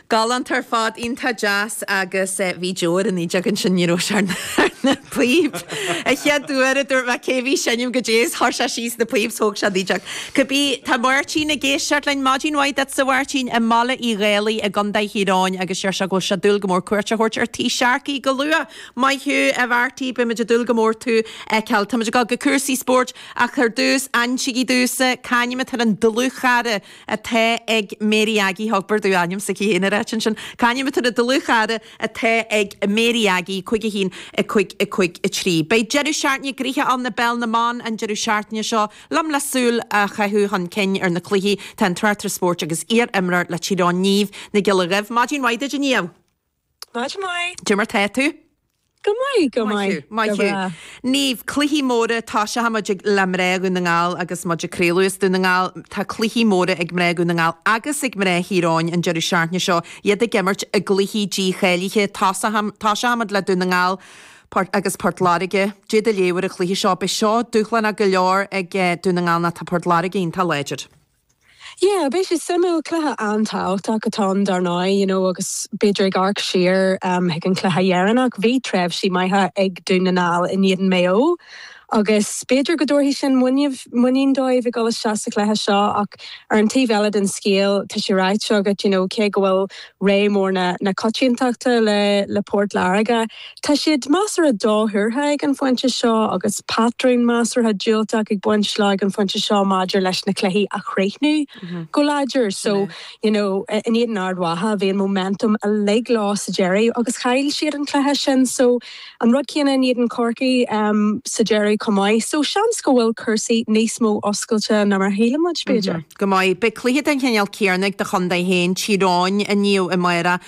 Galánta ar fad, iontach deas agus bhí Joe ar an fhideog ansin, ní raibh sé ar na píoba an chéad uair a dúirt mé cé bhí ag seinm cad é is chuir sé síos na píoba thóg sé an fhideog cibé tá Máirtín ag éisteacht linn, maidin mhaith duitse a Mháirtín i mBaile Uí Dhálaigh i gCondae Thír Eoghain agus deir sé go bhfuil sé ag dúil go mór cuairt a thabhairt ar Tí Sharkey go luath. Maith thú a Mhairtí beimid ag dúil go mór tú a fheiceáil. Táimid ag dul go cúrsaí spóirt ach ar dtús insígí damhsa, c'ainm atá ar an dlúthchara, atá ag Mary Aggie, thug Baird a ainm s'aici féin ar áit ansin, c'ainm atá ar an dlúthchara atá ag Mary Aggie, cúig a haon, a cúig, a cúig a trí. Beidh deireadh seachtaine gnoitheach ann i bPeil na mBan an deireadh seachtaine seo. Liom le súil a chaitheamh chun cinn ar na cluichí tá an tráchtaire spóirt agus iar-imreoir le Tír Eoghain, Niamh Nic Giolla Dhuibh. Maidin mhaith duit, a Niamh! Maidin mhaith. Cad é mar tá tú. Go maith, go maith. Maith thú, maith thú. Niamh, cluichí móra, tosóidh muid le mná Dhún na nGall agus muid ag craoladh as Dún na nGall, tá cluichí móra ag mná Dhún na nGall agus ag mná Thír Eoghain an deireadh seachtaine seo, iad ag imirt i gcluichí dícháilithe, tosóidh tosóidh muid le Dún na nGall Port agus Port Láirge, cad é do léamh ar an chluiche seo, beidh seo dúshlánach go leor ag Dún na nGall nó tá Port Láirge iontach láidir. Yeah, beidh sé suimiúil, cluiche an-tábhachtach atá ann dar ndóigh, you know, agus b'fhéidir ag amharc siar chuig an cluiche dheireanach, bhí tréimhsí maithe ag Dún na nGall in éadan Mhaigh Eo agus b'fhéidir go dtabharfaidh sin muinín, muinín dóibh ag dul isteach sa chluiche seo ach ar an taobh eile den scéal tá sé ráite agat, you know, cé go bhfuil rogha mór na coitiantachta le Port Láirge. Tá siad measartha dothuartha ag an phointe seo agus patrún measartha diúltach ag baint leo ag an phointe seo maidir leis na cluichí a chríochnú go láidir. So, you know, in éadan Ard Mhacha, bhí an momentum uilig leo sa deireadh agus chaill siad an cluiche sin. So. An rud céanna in éadan Chorcaí sa deireadh chomh maith so seans go bhfuil cúrsaí níos mó oscailte ná mar a shíleann muid, b'fhéidir. Go maith. Beidh cluiche den chineál céanna ag do chontae féin, Tír Eoghain, inniu i mBéarra.